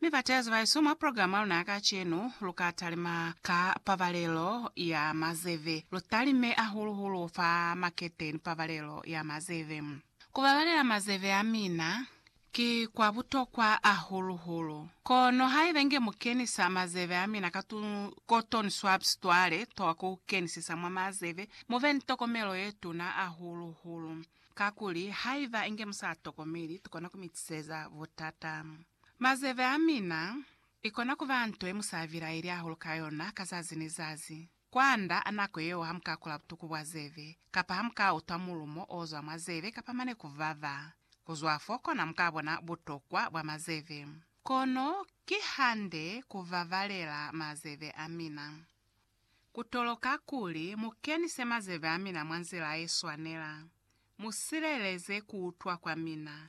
Mi bateezi baesu, mwa programa yaluna ya kacenu, lu ka talima ka pabalelo ya mazeve. Lu talime ahulu hulu fa makete ni pabalelo ya mazeve. Ku babalela mazeve a mina ki kwa butokwa ahulu hulu. Kono haiba inge mu kenisa mazeve a mina ka tu cotton swabs twa le toha ku kenisisa mwa mazeve, mu be ni tokomelo ye tuna ahulu hulu. Kakuli, haiba inge mu sa tokomeli, tu kona ku mi tiseza butata. Mazeve a mina, ikona kuba nto ye musa avilaeli ahulu ka yona ka zazi ni zazi. Kwanda a nako yeo hamuka kula butuku bwa zeve, kapa hamuka utwa mulumo ozwa mwa zeve kapa mane kuvava. Kuzwa fo kona muka bona butokwa bwa mazeve. Kono kihande kuvavalela mazeve a mina. Ku toloka kuli mu kenise mazebe a mina mwa nzila ye swanela. Mu sileleze ku utwa kwa mina.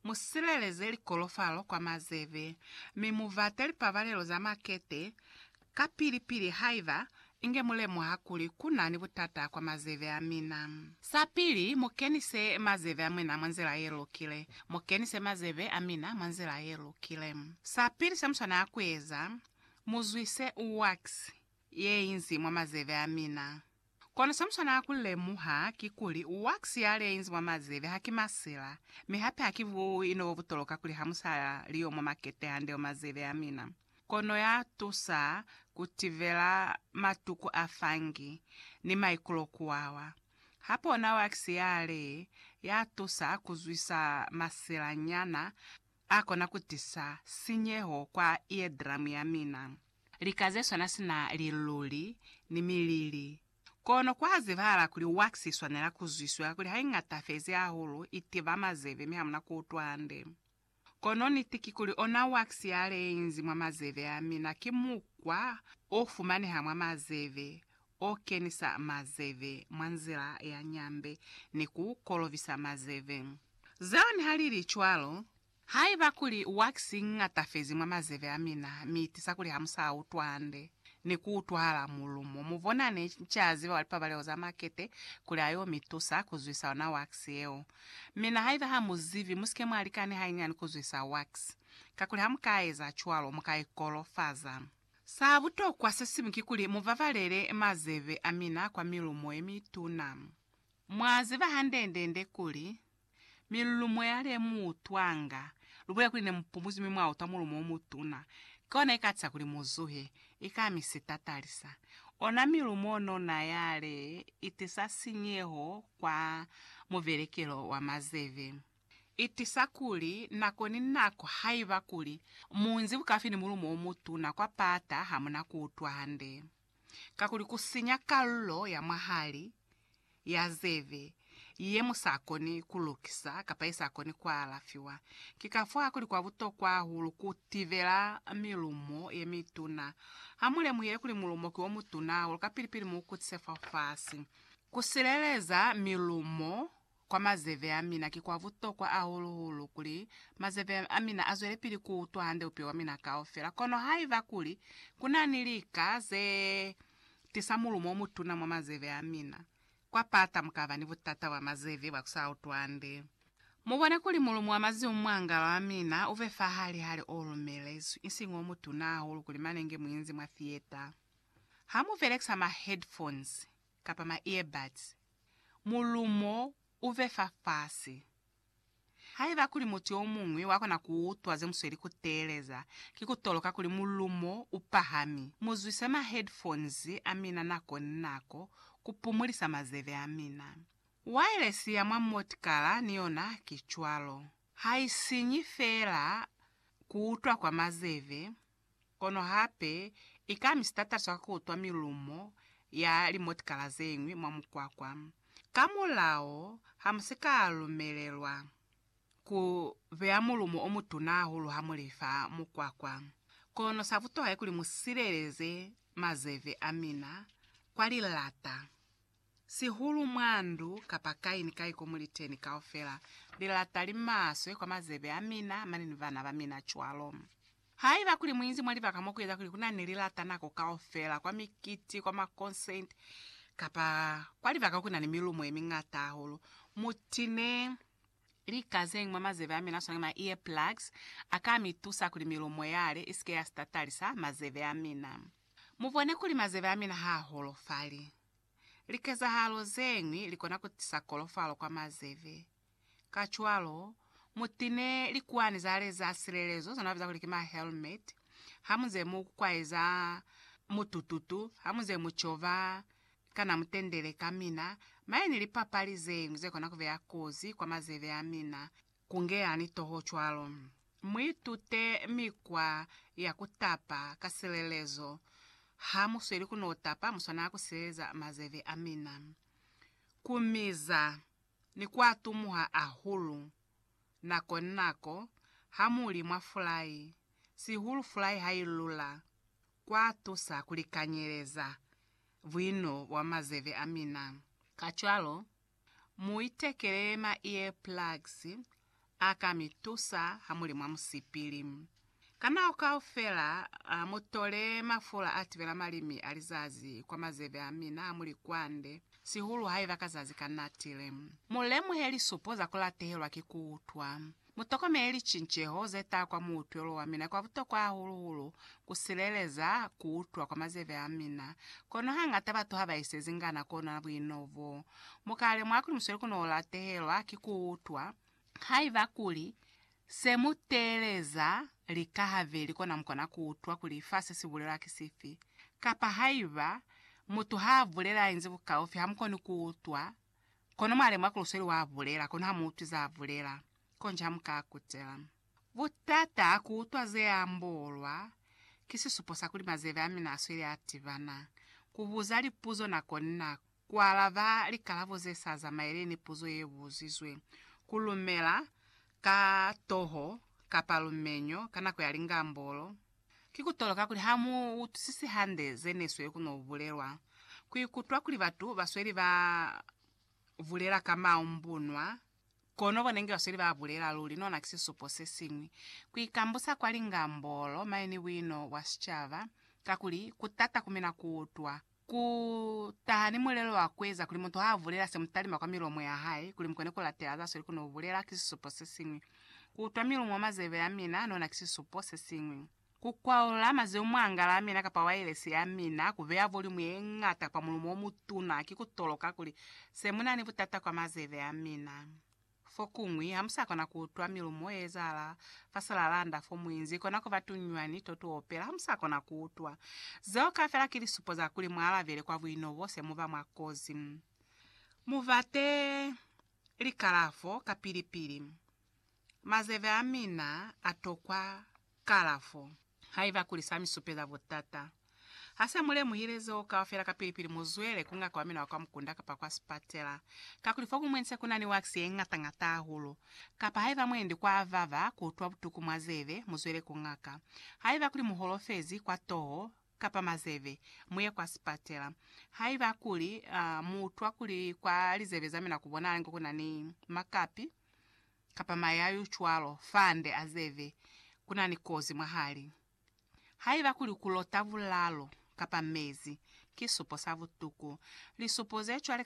Mu sileleze likolofalo kwa mazebe, mi mu bate lipabalelo za makete, kapili-pili haiba inge mu lemuha kuli ku na ni butata kwa mazebe a mina. Sa pili, mu kenise mazebe a mina mwa nzila ye lukile. Mu kenise mazebe a mina mwa nzila ye lukile. Sa pili se mu swanela ku eza, Muzwise wax yeinzi mwa mazeve amina. Kono semuswanela kulemuha kikuli, wax yaleinzi mwa mazeve haki masila, mi hape haki buino bobutoloka kuli hamusa liyo mwa makete hande mwa mazeve amina. Kono yatusa kutivela matuku a fungi ni maikulokuwawa. Hape ona wax yale yatusa kuzwisa masila nyana. A kona ku tisa sinyeho kwa eardramu ya mina. Lika ze swana sina liluli ni milili. Kono ku a zibahala kuli wax i swanela ku zwiswa kakuli ha i ngatafezi hahulu, i tiva mazeve mi hamuna ku utwa hande. Kono niti kikuli ona wax yale ye inzi mwa mazeve a mina ki mukwa o fumaneha mwa mazeve o kenisa mazeve mwa nzila ya nyambe ni ku kolobisa mazeve. Zone ha li li cwalo, Haiba kuli wax i ñatafezi mwa mazeve a mina mi i tisa kuli ha mu sa utwa hande ni ku utwahala mulumo, mu bona ne ca ziba wa lipabaleho za makete kuli a yo mi tusa ku zwisa ona wax yeo. Mina haiba ha mu zibi, mu si ke mwa lika ni hainyani ku zwisa wax, kakuli ha mu ka eza cwalo, mu ka ikolofaza. Sa butokwa se siñwi kikuli mu babalele mazebe a mina kwa milumo ye mituna. Mwa ziba hande-nde-nde kuli, milumo ya le mu utwanga, lu bulela kuli ne mu pumuzwi mi mwa utwa mulumo o mutuna, ki ona i ka tisa kuli mu zuhe, i ka mi sitatalisa. Ona milumo nona ya le i tisa sinyeho kwa mubelekelo wa mazebe. Itiisa kuli nako ni nako haiba kuli muunzi bukafi ni mulumo omutuna kwa paata hamuna kuutwa hande, kakuli kusinya kalulo ya mwahali ya zebe yemusakoni kulukisa kapa yesakoni kualafiwa. Ki kafoo kuli kwa butokwa hahulu kutibela milumo yemituna. Hamulemuhile kuli mulumo ki omutuna hahulu kapili-pili muukutsise fafasi. Kusileleza milumo Kwa mazeve a mina, ki kwa butokwa hahulu-hulu kuli mazeve a mina a zwelepili ku utwa hande upe wa mina kaufela. Kono haiba kuli ku na ni lika ze tisa mulumo o mutuna mwa mazeve a mina, kwa pata mu ka ba ni butata bwa mazeve bwa ku sa utwi hande. Mu bone kuli mulumo wa maziumwangalo a mina u be fa hali hali o lumelezwi, isiñi o mutuna hahulu kuli mane nge mu inzi mwa theater ha mu belekisa ma-headphones. kapa ma earbuds, mulumo u be fafasi. Haiba kuli mutu yo muñwi wa kona ku utwa ze mu sweli ku teeleza, ki ku toloka kuli mulumo u pahami. Mu zwise ma headphones a mina nako ni nako ku pumulisa mazebe a mina. Wireless ya mwa motikala ni yona ki cwalo. Ha i sinyi feela ku utwa kwa mazebe, Kono hape i ka ami sitataliso ka ku utwa milumo ya limotikala ze ñwi mwa mukwakwa. Ka mulao, ha mu si ka lumelelwa ku beya mulumo o mutuna hahulu ha mu li fa mukwakwa. Kono sa butuha ki kuli mu sileleze mazeve a mina kwa lilata. Sihulu mwa ndu kapa kai ni kai ko mu li teni, kaufela li lata li maswe kwa mazebe a mina mane ni bana ba mina cwalo. Haiba kuli mu inzi mwa libaka mo ku eza kuli ku na ni lilata nako kaufela, kwa mikiti, kwa makonseti, kapa kwa libaka ku na ni milumo ye miñata hahulu, mu tine lika ze ñwi mwa mazebe a mina, swana ni ma earplugs, a ka mi tusa kuli milumo yale i si ke ya sitatalisa mazebe a mina. Mu bone kuli mazebe a mina ha a holofali. Likezahalo zeñwi likona kutisa kolofalo kwa mazeve. Kacwalo, mutine likuwani zale za silelezo zonabiza kuli ki ma helmet hamuze mu kwaeza mutututu, hamuze mu cova kana mutendele kamina. Mañi ni lipapali zeñwi zekona kubeya kozi kwa mazeve amina Kungeani toho cwalo. Muitute mikwa ya kutapa ka silelezo. Hamusweli kuno tapa, muswanela kusileleza mazeve amina. Kumiza ni kuatumuha ahulu nako ni nako hamuli mwa fulai, sihulu fulai hailula, kwatusa kulikanyeleza buino bwa mazeve amina. Kacwalo, Mu itekele ma ear plugs a ka mi tusa ha mu li mwa musipili. Ka nako kaufela mu tole mafula a tibela malimi a lizazi kwa mazeve a mina ha mu li kwande, sihulu haiba ka zazi ka natile. Mu lemuhe lisupo za ku latehelwa ki ku utwa. Mutokomele licinceho zeta kwa muutwelo wamina kwa butokwa hahulu-hulu kusileleza kuutwa kwa mazeve amina. Kono hangata batu habaisezi ngana kuonana buino bo. Mukalemwa kuli musweli kunoolatehelwa ki kuutwa haiba kuli se muteeleza lika habeli kona mukona kuutwa kuli fa se sibulela ki sifi. Kapa haiba mutu haabulela inzi bukaufi hamukoni kuutwa Kono mwa lemuha kuli usweli wa bulela, kono ha mu utwi za bulela. Konji ha mu ka kutela. Butata ku utwa ze ambolwa, ki sisupo sa kuli mazeve a mina a sweli a tibana. Ku buza lipuzo nako ni nako, ku alaba likalabo ze sa zamaeli ni puzo ye buzizwe, ku lumela ka toho kapa lumenyo ka nako ya lingambolo, Ki kutoloka kuli ha mu utwisisi hande ze ne sweli ku no bulelwa. Ku ikutwa kuli batu ba sweli ba bulela ka maumbunwa, kono bo ne nge ba sweli ba bulela luli, nona ki sisupo se siñwi. Ku ikambusa kwa lingambolo mañi ni buino bwa sicaba, kakuli ku tata ku mina ku utwa. Ku taha ni mulelo wa ku eza kuli mutu ha bulela se mu talima kwa milomo ya hae, kuli mu kone ku latela za sweli ku no bulela, ki sisupo se siñwi. Ku utwa milumu mwa mazebe a mina nona ki sisupo se siñwi. Ku kwaula mazeu mwa angala ya mina kapa wailesi ya mina, ku beya voliumu ye ñata kapa mulumo o mutuna, ki ku toloka kuli se mu na ni butata kwa mazebe a mina. Fokuñwi, hamusakona kuutwa milumo yeezahala fa silalanda fomuinzi, kona kuba tuñwani totuopela, hamusakona kuutwa. Zeo kaufela ki lisupo za kuli mwaalabele kwa buino bo se muba mwa kozi. Mubate likalafo kapili-pili. Mazebe amina atokwa. Kalafo, Haiba kuli sa mi supeza butata, ha se mu lemuhile zeo kaufela kapili-pili mu zwele ku ngaka wa mina wa kwa mukunda kapa kwa sipatela, kakuli fo ku mwendi se ku na ni wax ye ngata-ngata hahulu. Kapa haiba mu endi kwa avava ku utwa butuku mwa zebe, mu zwele ku ngaka. Haiba kuli mu holofezi kwa toho kapa mazebe, mu ye kwa sipatela. Haiba kuli mu utwa kuli kwa lizebe za mina ku bonahala inge ku na ni makapi, kapa mayayu cwalo fande a zeve, ku na ni kozi mwahali. Haiba kuli ku lota bulalo kapa mezi, ki supo sa butuku. Lisupo ze cwale